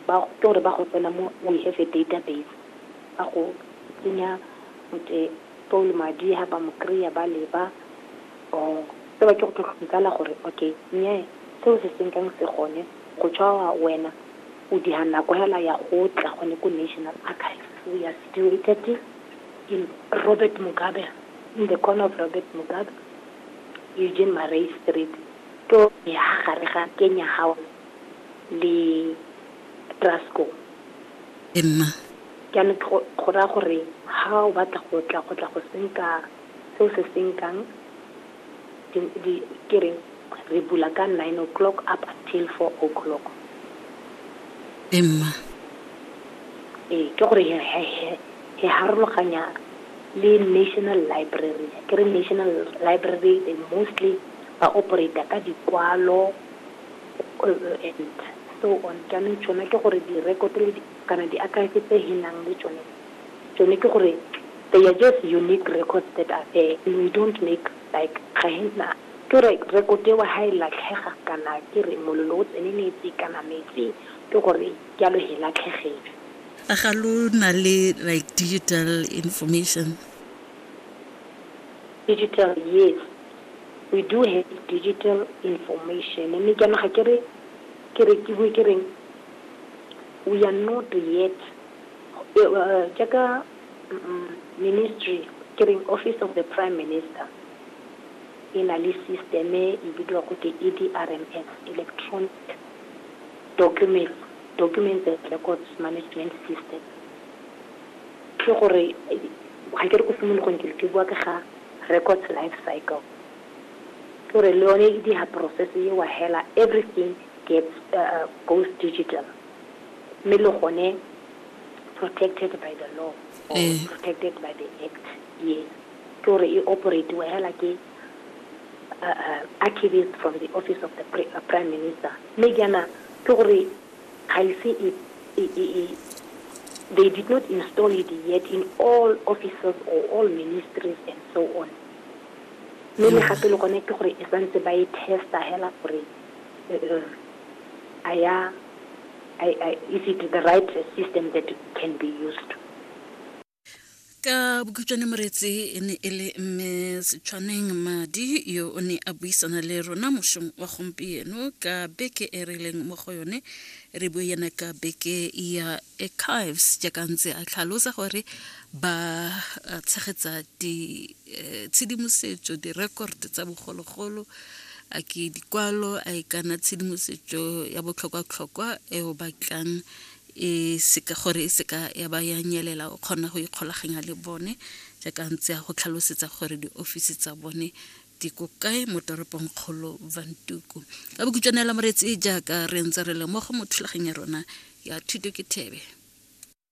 ba ke gore ba go tsena mo we have a database ba go tsenya motse paul madi ha ba mo kry-a ba leba or se ba ke go tlhotlhomikala gore okay nye seo se senkang se gone go tshwa wena o diha nako hela ya go tla gone ko national archives we are situated in robert mugabe in the corner of robert mugabe eugene marais street to ya gare ga kenya house le Trascom. Ee, mma. Jaanong ke go, go raya gore ha o batla go tla, go tla go senka seo se senkang, di, di, ke reng, re bula ka nine o'clock up until four o'clock. Ee, mma. Ee, ke gore he, he, he, he harologanya le National Library. Ke re National Library, they mostly ba operate-a ka dikwalo. kgwebo e ntšha. So on, jaanong tšona ke gore direkoto le di, kana diakhaefe tse he nang le tšone, tšone ke gore they are just unique records that are there and we don't make like ga he na, ke gore rekoto eo ha e latlhega kana ke re molelo o tseneletse kana metsi ke gore jalo he latlhegetswe. A ga lo na le like digital information? Digital, yes. we do have digital information mme ke yana ga ke re ke re ke bue ke reng we are not yet uh, jaaka um, ministry ke reng office of the prime minister e na le systeme e bidiwa go ke edrms electronic documents documents and records management system Ke gore ga ke re ko simologong ke ke bua ka ga records life cycle ke gore le yone e diga process e wa hela everything gets uh, goes digital mme le gone protected by the law or eh. protected by the act yes ke gore e operate wa hela ke uh, uh, archivist from the office of the uh, prime minister mme jaana ke gore Ga ise e, e, e, e, they did not install it yet in all offices or all ministries and so on. Mme le gape le gone ke gore e santse ba e testa hela gore eh, eh, a ya I, I, is it the right system that can be used? ka bokhutšwane moreetsi e ne e le mme setshwaneng madi yo o ne a buisana le rona mošong wa gompieno ka beke e re leng mo go yone re bue yena ka beke ya archives jaaka ntse a tlhalosa gore ba tshegetsa ditshedimosetso eh, di-record tsa bogologolo a ke dikwalo a e kana tshedimosetso ya botlhokwatlhokwa e o batlang e seka gore e seka ya ba ya nyelela o kgona go ikgolaganya le bone jaaka ntse ya go tlhalosetsa gore diofisi tsa bone di ko kae mo toropong kgolo vantuku ka bokutswanela moretsi jaaka re ntse re le mo go mo thulaganya rona ya thuto ke thebe